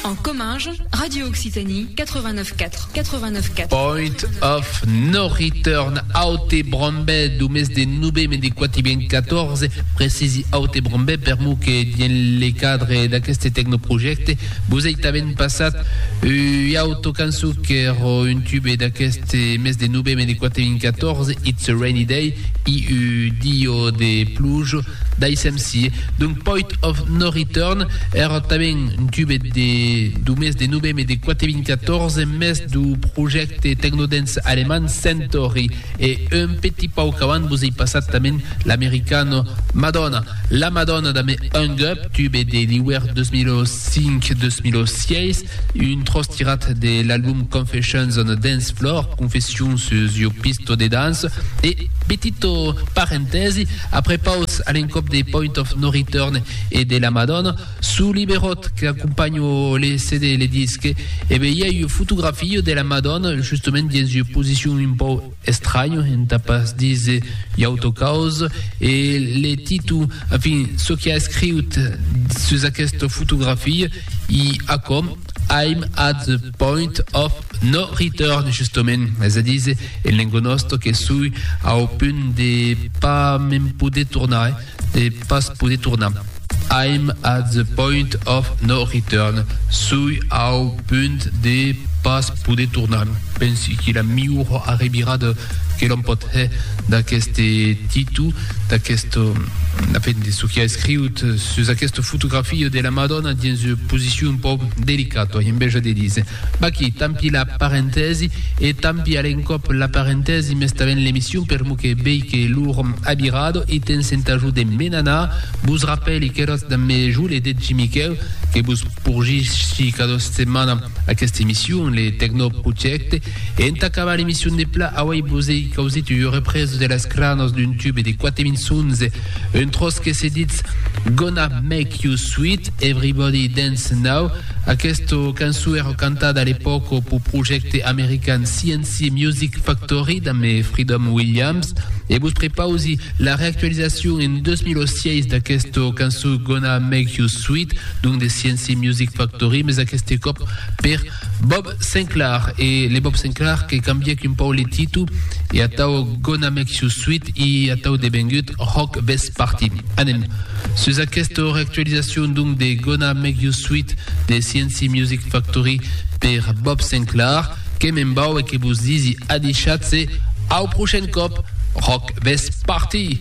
En Comminges, Radio Occitanie 89 4, 89 4. Point of no return aute Brombè do mes de noveme de 414, precisi aute Brombè per mo que dien le cadre d'aqueste tecnoprojecte vos ei tanben passat ui auto canço qu'er un tube d'aqueste mes de noveme de 414, It's a Rainy Day, i u dio de plujo, Daissèm-si, d'un poit of no return, èr tanben jubet de du mes de novem e de quate vint quatòrze mes du projècte tecnodance alemand Centauri e un petit pauc avant vos ei passat tanben l'americano Madonna. La Madonna damb Hung Up, tube de l'iuèrn 2005-2006, Un tròç tirat de l'album Confessions on a Dance Floor, Confessions sus ua pista de dança, e petito parentèsi, après paus a l'encòp de Point of No Return e de La Madonna, sus liberòt qu'acompanha le CD le disque, e be i a ua fotografia de la Madonna justament dins ua posicion un pauc Estranh entà pas díser iauto caus, e le Titu, enfin, çò qu'i a escriut sus aquesta fotografia, i a com, I'm at the point of no return, justement, es a díser, en lenga nòsta, que sui au punt de pas me'n poder tornar. de pas poder tornar. I'm at the point of no return, sui au punt de pas poder tornar. Pensi que la miura arrebirada que l'òm pòt hè d'aqueste Titu, d'aquest, en fin, de çò qu'i a escriut sus aquesta fotografia de la Madonna dins ua posicion un pauc delicata, en bèja de dire. Vaquí, tant p'i la parentèsi, e tant p'i a l'encòp la parentèsi, mès tanben l'emission per lo que vei que lo rom abirado i tens entà jo de me n'anar, vos rapèli qu'eròtz damb me jo le Degi Miquèu, que vos porgissi cada setmana aquesta emission, le Tecnoprojècte, e entà acabar l'emission de pla, auei vos ei causit ua represa de las cranas d'un tube de quate minçons, un tròç que se ditz Gonna Make You Sweet, Everybody Dance Now, Aquesta cançó èra cantada a l'epòca pau projècte american CNC Music Factory damb Freedom Williams e vos prepausi la reactualizacion en 2006 d'aquesta cançó Gonna Make You Sweet, donc de CNC Music Factory, mes aqueste còp per Bob Sinclair e le Bob Sinclair que cambièc un pauc le titu e atau Gonna Make You Sweet e atau devengut Rock Vest Party. Anem sus aquesta reactualizacion donc de Gonna Make You Sweet de CNC Music Factory per Bob Sinclair que me'n vau e que vos disi adishat se au prochain còp Rock Vest Party!